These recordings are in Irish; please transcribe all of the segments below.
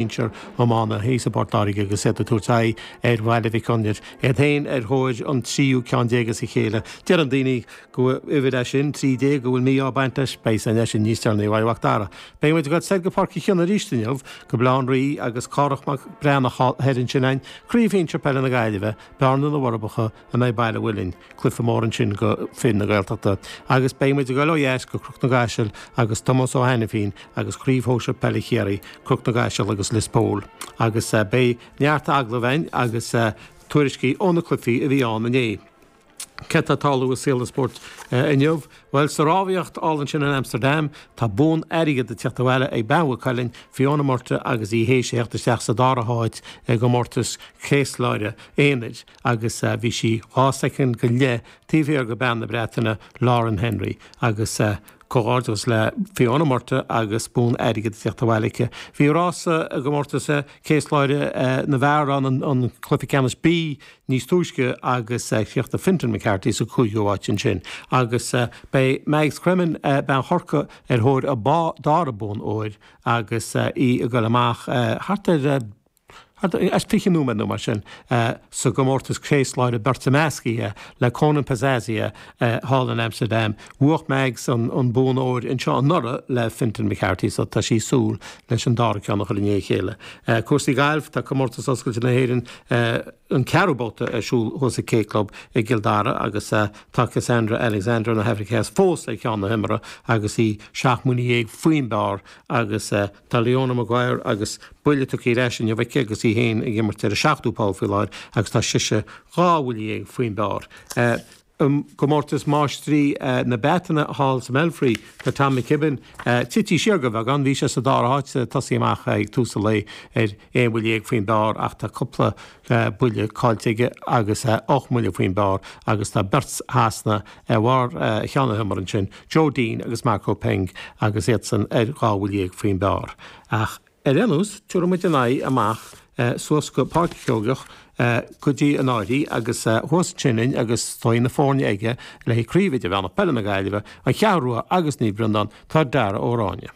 sinsear iomána thíos i bPort Láirge agus iad ag tabhairt aghaidh ar Bhaile Mhic Gonair, iad féin ar thóir an tríú ceann déag as a chéile. Deireann daoine gur uimhir é sin, trí déag, go bhfuil mí-ádh ag baint leis. Beidh a fhios a'inn é sin níos deireanaí uaidh Mhac Dara. Beidh muid ag dul soir go Páirc Uí Chionnaith arís inniu, go Baile Átha an Rí agus Cárthach Mac Breathnach thoir ansin againn, craobh shinsir peile na Gaillimhe, Bearna, na bhForbacha, in aghaidh Baile an Mhuilinn, cluiche mór ansin do fir na Gaeltachta agus beidh muid ag dul ó dheas go Cnoc na gCaiseal agus Tomás Ó hAinifín agus Craobh Shóisir Peile Chiarraí, Cnoc na gCaiseal agus Lios Póil agus beidh neart agallamh a'inn agus tuairiscí ó na cluifí a bhí ann inné. Cad atá ag tarlú i saol an spóirt inniu? Bhuel sa rámhaíocht thall ansin in Amsterdam tá bonn airgid ag teacht abhaile ag Bean Mhaigh Cuilinn, Fiona Murtagh agus í théis a theacht isteach sa dara háit i gcomórtas céaslaire aonair. agus bhí sí dhá soicind go leith taobh thiar de Bean na Breataine, Lauren Henry, agus comhghairdeachas le Fiona Murtagh agus bonn airgid ag teacht abhaile aici. Bhí rása i gcomórtas céasláire na bhfear ann, an cluiche ceannais B, níos túisce agus chríochnaigh Fintan McCarthy sa 5ú háit ansin. Agus beidh Mags Cremen, bean Chorcaí ar thóir a dara bonn óir agus í ag goil amach thart ar. fiche nóiméad nó mar sin sa gcomórtas Céaslaire Beirte Meascaithe le Konan Pazzaia, thall in Amsterdam, bhuaigh Mags an bonn óir anseo anuraidh le Fintan McCarthy so tá sí ag súil leis an dara ceann a chur i ndiaidh a chéile. Cúrsaí Gailf, tá Comórtas Oscailte na hÉireann an ceathrú babhta ar siúl thuas ag an K-Club i gCill Dara agus tá Casandra Alexander na hAifrice Theas fós ar cheann na himeartha agus í seacht mbuille dhéag faoin bpar agus Tá Leona Maguire agus buille tugtha ar ais inniu aici agus í féin ag imirt ar an seachtú poll faoi láthair agus tá sise dhá bhuille dhéag faoin bpar. I gcomórtas máistrí na Breataine thall sa mBelfry, tá Tom McKibbin tite siar de bheagán. Bhí sé sa dara háit ag tosaí amach ag tús an lae ar 1 bhuille dhéag faoin bpar ach tá cúpla buille caillte aige agus 8 mbuille faoin bpar agus tá beirt Shasanach ar bharr cheann na himeartha ansin, Joe Dean agus Marco Penge agus iadsan ar 2 bhuille dhéag faoin bpar ach ar aon nós tabharfaidh muid an aghaidh amach suas go Páirc Sheoigeach go dtí an Prairie agus thuas ansin a'inn agus tá na foirne aige le haghaidh Craobh Idirmheánach Peile na Gaillimhe, An Cheathrú Rua agus Naomh Breandán, tá Dara Ó Ráinne.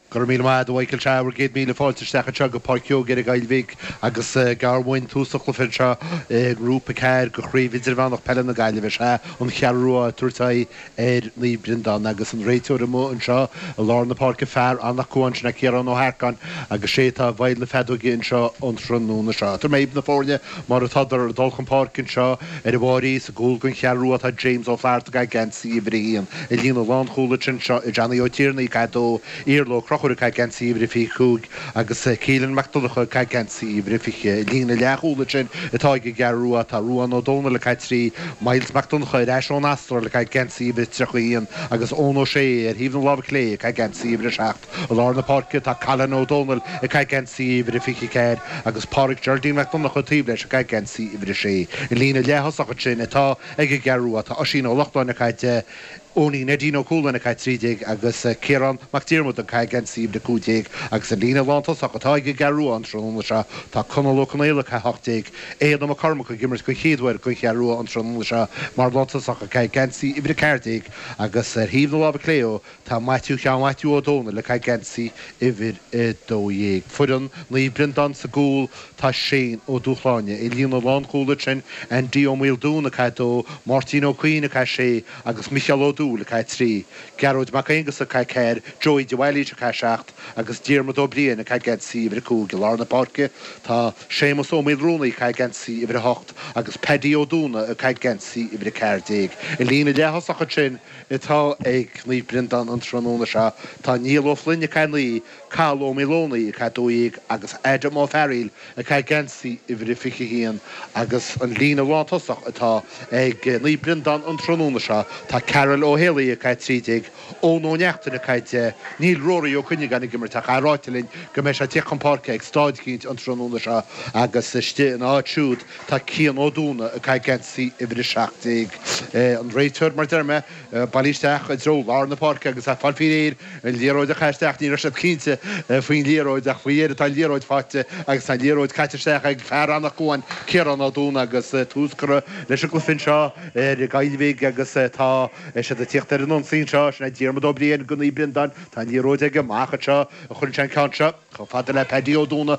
Go raibh míle maith a'd a Michael. Sea, bhur gcéad míle fáilte isteach anseo go Páirc Seoige i nGaillimh agus gar uainn tús an chluiche anseo i ngrúpa ceathair de Chraobh Idirmheánach Peile na Gaillimhe. Is ea an Cheathrú Rua ag tabhairt aghaidh ar Naomh Breandán agus an réiteoir amuigh anseo i lár na páirce, fear Anach Cuain sin é Ciarán Ó hEarcáin agus sé atá i bhfeighil na feadóige anseo an tráthnóna seo. Tabharfaidh mé dhaoibh na foirne Mar atádar ag dul chun páirce anseo ar an Máimín, sa gcúl don Cheathrú Rua, tá James Ó Flatharta ag caitheamh geansaí uimhir a haon i líne na lánchúlaithe ansin, i Johnny Ó Tiarnaigh ag caitheamh a dó, Iarla Ó Conchubhair ag caitheamh geansaí uimhir a fiche a cúig, agus Keelan Mac Donncha ag caitheamh geansaí uimhir a fiche. I líne na leathchúlaithe ansin atá ag an gCeathrú Rua, tá Ruadhán Ó Dónaill ag caitheamh trí, Myles Mac Donncha ar ais ón Astráil ag caitheamh geansaí uimhir a tríocha a haon, agus Eoin Ó Sé, ar thaobh na láimhe clé, ag caitheamh geansaí uimhir a seacht. I lár na páirce tá Cailin Ó Dónaill ag caitheamh geansaí uimhir a 24 agus Páraic Geraldine Mac Donnacha taobh leis ag caitheamh geansaí uimhir a 6. I líne leath-thosach ansin atá ag an gCeathrú Rua tá Oisín Ó Lócháin ag caitheamh 10, Eoinín Neidín Ó Cualáin ag caitheamh 13 agus Ciarán Mac Diarmada ag caitheamh geansaí uimhir a 15 agus i líne lán-tosach atá ag an gCeathrú Rua an tráthnóna seo tá Conall Ó Conaola ag caitheamh 18, Éanna Mac Cormaic ag imirt den chéad uair don Cheathrú Rua an tráthnóna seo mar lántosach ag caitheamh geansaí uimhir a 14 agus ar thaobh na láimhe clé ó Tá Maitiú Sheáin Mhaitiú Ó Dónaill ag caitheamh geansaí uimhir a 12. Foireann Naomh Breandán sa gcúl, tá Shane Ó Dúshláine i líne na lánchúlaithe ansin, Andy Ó Maoldúin ag caitheamh 2, Máirtín Ó Cuinn ag caitheamh 6 agus Micheál Ó Dúill ag caitheamh 3. Gearóid Mac Aonghusa ag caitheamh 4, Joey de Bhailís ag caitheamh 7 agus Diarmuid Ó Briain ag caitheamh geansaí uimhir a 5. I lár na páirce, tá Séamus Ó Maolruanaí ag caitheamh geansaí uimhir a 8 agus Paddy Ó Dúna ag caitheamh geansaí uimhir a 14. I líne leath-thosach ansin atá ag Naomh Breandán an tráthnóna seo. Tá Niall Ó Floinn ag caitheamh 9, Cathal Ó Maolónaigh ag caitheamh 12, agus Adam Ó Fearaíl ag caitheamh geansaí uimhir a 21 agus an líne lántosach atá ag Naomh Breandán an tráthnóna seo, tá Karl Ó hÉalaí ag caitheamh 13, Eoin Ó Neachtain ag caitheamh 10, Níl Rory Ó Cuinneagáin ag imirt ach é ráite linn go mbeidh sé ag tíocht chun páirce ag staid eicínt an tráthnóna seo agus istigh ina áit siúd Tá Cian Ó Dúna ag caitheamh geansaí uimhir a 17 an réiteoir mar a deir mé, bailithe isteach i dtreo lár na páirce agus ag fáil faoi réir an liathróid a chaitheamh isteach, ní raibh siad cinnte faoin liathróid ach faoi dheireadh tá an liathróid faighte agus tá an liathróid caite isteach ag fear Anach Cuain, Ciarán Ó Dúna agus tús curtha leis an gcluiche anseo ar Gaillmhigh agus tá siad ag tíocht ar an ionsaí anseo, sin é Diarmuid Ó Briain, do Naomh Breandán, tá an liathróid aige, amach anseo a chuireann sé an ceann seo, chomh fada le Paddy Ó Dúna,